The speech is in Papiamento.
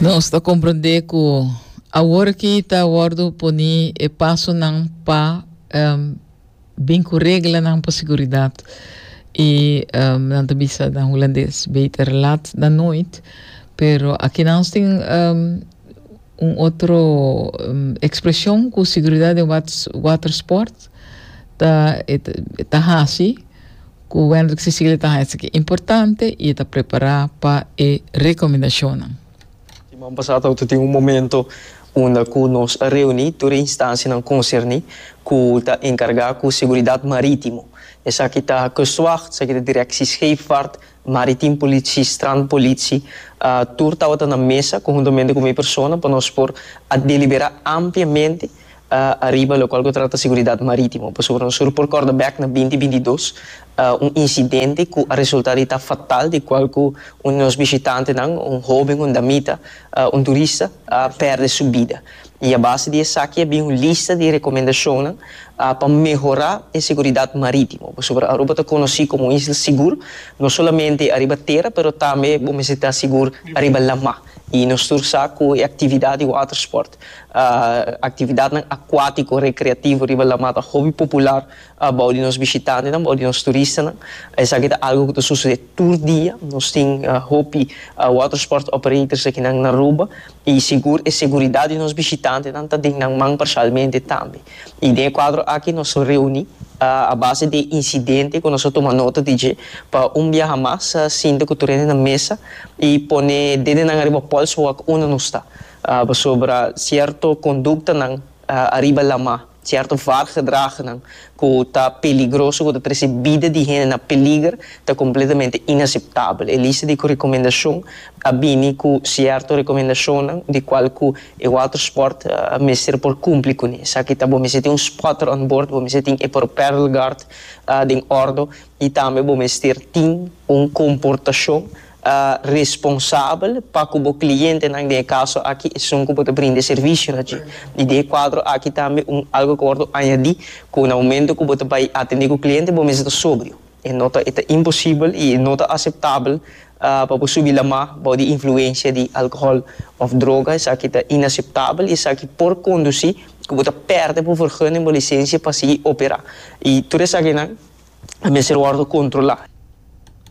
Nos ta comprende cu awor ki ta wordo poni e pasonan pa um, bin cu reglanan pa seguridad. Y um, nan ta bisa na Hulandes, beter laat dan nooit. Pero aki nan nos tin um, Un otro expresion cu seguridad den watersport ta e ta haci cu Wendrick Cecilia ta haña esaki importante y e ta prepara pa e recomendacionnan. Siman pasá tawata tin un momento unda cu nos a reuní tur e instancianan concerní cu ta encargá cu seguridad marítimo. Esaki ta Kustwacht, esaki ta Directie Scheepvaart, Maritim Politie, Strand Politie, tur tabata na mesa conhuntamente cu mi persona pa nos por a delibera ampliamente ariba locual cu trata seguridad maritimo. Pasobra nos sur por corda bek na binti binti dos un incidente cu a resulta di ta fatal di cual cu un di nos bishitantenan, un hoben, un damita, un turista, a perde su bida. i a base di esaki a bin un lista di rekomendashonnan pa mehorá e seguridat marítimo. Pasobra Aruba ta konosí komo un isla sigur, no solamente ariba tera pero tambe bo mester ta sigur ariba lamá. I nos tur sa ku e aktividat di watersport, aktividatnan akuátiko rekreativo riba lamá ta hopi popular bou di nos bishitantenan, bou di nos turistanan. Esaki ta algu ku ta susedé tur dia. Nos tin hopi watersport operators akinan na Aruba I sigur e seguridat di nos bishitantenan ta den nan man parshalmente tambe. I den e kuadro aki nos a reuni a base di e insidente ku nos a tuma nota di dje pa un biaha mas sinta ku tur hende na mesa i pone dede nan ariba pòls wak unda nos ta, pasobra sierto konduktanan ariba lamá. Cierto vaartgedragnan cu ta peligroso, cu ta trece bida di hende na peliger, ta completamente inaceptabel. E lista di cu recomendacion a bini cu cierto recomendacionnan di cual cu e watersport mester por cumpli cune. Esaki ta bo mester tin un spotter on board, bo mester tin e propellerguard den ordo y tambe bo mester tin un comportacion. ta responsabel pa ku bo klientenan den e kaso aki esun ku bo ta brinda e servisionan dje. I den e kuadro aki tambe un algu ku a wòrdu añadí ku na momentu ku bo ta bai atendé ku kliente bo mester ta sobrio. E no ta e ta imposibel i e no ta aseptabel pa bo subi lamá bou di influensia di alkohòl òf droga. Esaki ta inaseptabel i esaki por kondusí ku bo ta pèrdè bo vergunning, bo lisensia pa sigui operá. I tur esakinan ta mester wòrdu kontrolá.